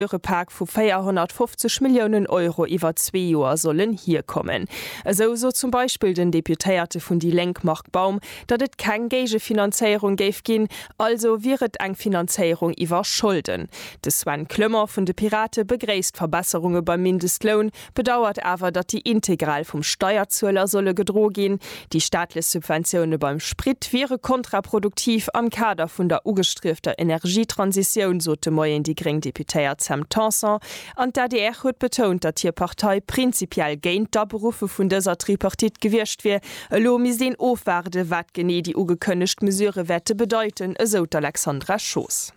Dure Pak vu 450 Milliounen Euro iwwer zwee Joer sollen hierkommen. Esou sot zum Beispill den Deputéierte vun déi Lénk Marc Baum, datt et keng Géigefinanzéierung géif ginn, also wier et eng Finanzéierung iwwer Scholden. De Sven Clement vun de Pirate begréisst Verbesserunge beim Mindestloun, Bedauert awer, datt déi integral vum Steierzueler solle gedro ginn. Déi staatlech Subventioune beim Sprit wiere kontraproduktiv am Kader vun der ugestriefter Energietransitioun, sot de Moien déi gréng Deputéiert Sam Tanson. An d'ADR huet betount, datt hir Partei prinzipiell géint d'Aberuffe vun dëser Tripartite gewiescht wier. Elo misst een ofwaarden, wat genee déi ugekënnegt Mesurë wäerte bedeiten, esou d'Alexandra Schoos.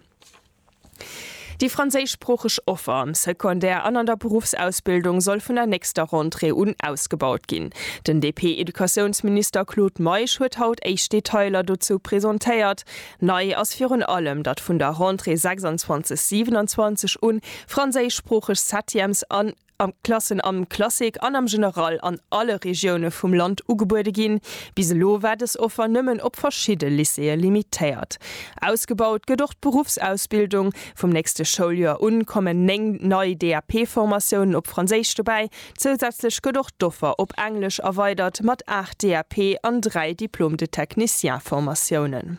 Déi franséischsproocheg Offer am Secondaire an an der Beruffsausbildung soll vun der nächster Rentrée un ausgebaut ginn. Den DP-Educatiounsminister Claude Meisch huet haut éischt Detailer dozou presentéiert. Nei ass virun allem, datt vun der Rentrée 26/27 un franséischsproocheg Septièmes an. an d'Klassen am Classique an am General an alle Regioune vum Land ugebuede ginn. Bis elo war dës Offer nëmmen op verschidde Lycéeë limitéiert. Ausgebaut gëtt och d'Beruffsausbildung. Vum nächste Schouljoer un kommen 9 nei DAP-Formatiounen op Franséisch dobäi. Zousätzlech gëtt och d'Offer op Englesch erweidert mat 8 DAP an 3 Diplôme de technicien-Formatiounen.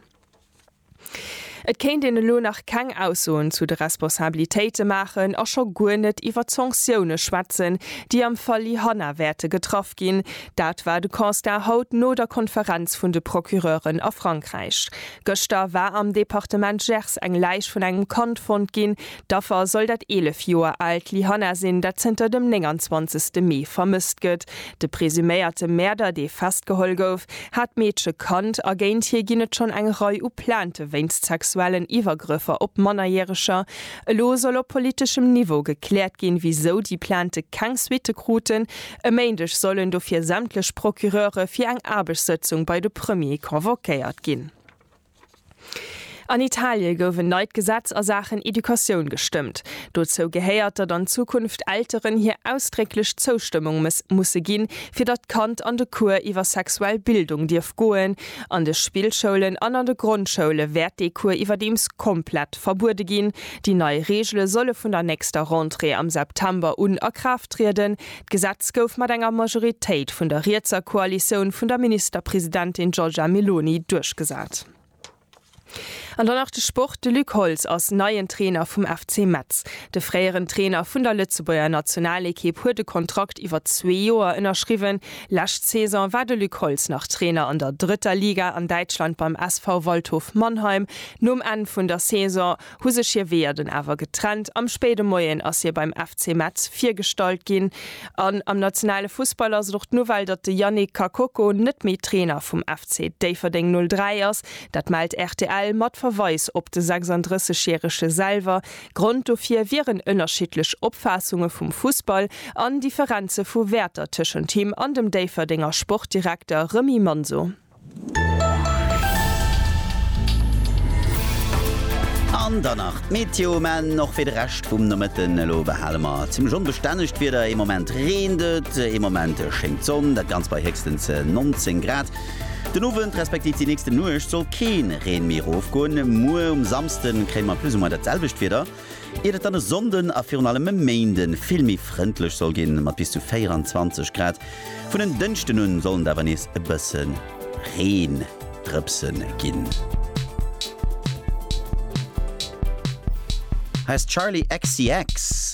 Et kéint een elo nach keng Aussoen zu de Responsabilitéite maachen a scho guer net iwwert d'Sanktioune schwätzen, déi am Fall Lyhanna wäerte getraff ginn. Dat war de Constat haut no der Konferenz vun de Procureuren a Frankräich. Gëschter war am Departement Gers eng Läich vun engem Kand fonnt ginn, D'Affer soll dat 11 Joer aalt Lyhanna sinn, dat zënter dem 29 Mee vermësst gëtt. De presuméierte Mäerder, dee festgeholl gouf, hat d'Meedche kannt a géint hie ginn et schonn eng Rei u Plainte wéinst sexuellen Iwwergrëffer op Mannerjäreger. Elo soll op politeschem Niveau gekläert ginn, wisou déi Plainte keng Suitte kruten. E Méindeg sollen dofir sämtlech Procureure fir eng Aarbechtssëtzung bei de Premier convoquéiert ginn. An Italie gouf en neit Gesetz a Saachen Educatioun gestëmmt. Dozou gehéiert, datt an Zukunft Elteren hir ausdrécklech Zoustëmmung musse ginn, fir datt d'Kand an de Cours iwwer sexuell Bildung dierf goen. An de Spillschoulen an an de Grondschoule wäert dee Cours iwwerdeems komplett verbuede ginn. Déi nei Reegele solle vun der nächster Rentrée am September un a Kraaft trieden. D'Gesetz gouf mat enger Majoritéit vun der rietser Koalitioun vun der Ministerpresidentin Giorgia Meloni duerchgesat. An dann nach de Sport, De Luc Holtz ass neien Trainer vum FC Metz. De fréieren Trainer vun der Lëtzebuerger Nationalekipp huet e Kontrakt iwwer zwee Joer ënnerschriwwen. Lescht Saison war de Luc Holtz nach Trainer an der drëtter Liga an Däitschland beim SV Waldhof Mannheim. Nom Enn vun der Saison hu sech hir Weeër dunn awer getrennt. Am spéide Moien ass hie beim FC Metz virgestallt ginn an am nationale Fussball ass et och d'Nouvelle, datt de Yannick Kakoko net méi Trainer vum FC Déifferdeng 03 ass. Dat mellt rtl mat Verweis op de 36 järege selwer. Grond dofir wieren ënnerschiddlech Opfaassunge vum Fussball an Differenze vu Wäerter tëschent him an dem Déifferdenger Sportdirekter Remy Manso. An dann nach d'Meteo, mä och fir de Rescht vum Nomëtten. Elo behale mer zimmlech onbestännegt Wieder, ee Moment reent et, ee Moment schéngt d'Sonn, dat Ganzt bei héchstens 19 Grad. Den Owend respektiv déi nächste Nuecht soll kee Reen méi erofgoen. Muer um Samsde kréie mer plus ou moins dat selwecht Wieder. Iert et dann e Sonnden a virun allem e Méinde vill méi frëndlech soll ginn, mat bis zu 24 Grad. Vun en Dënschden un sollen et awer nees e bësse Reendrëpse ginn. Heißt Charli XCX.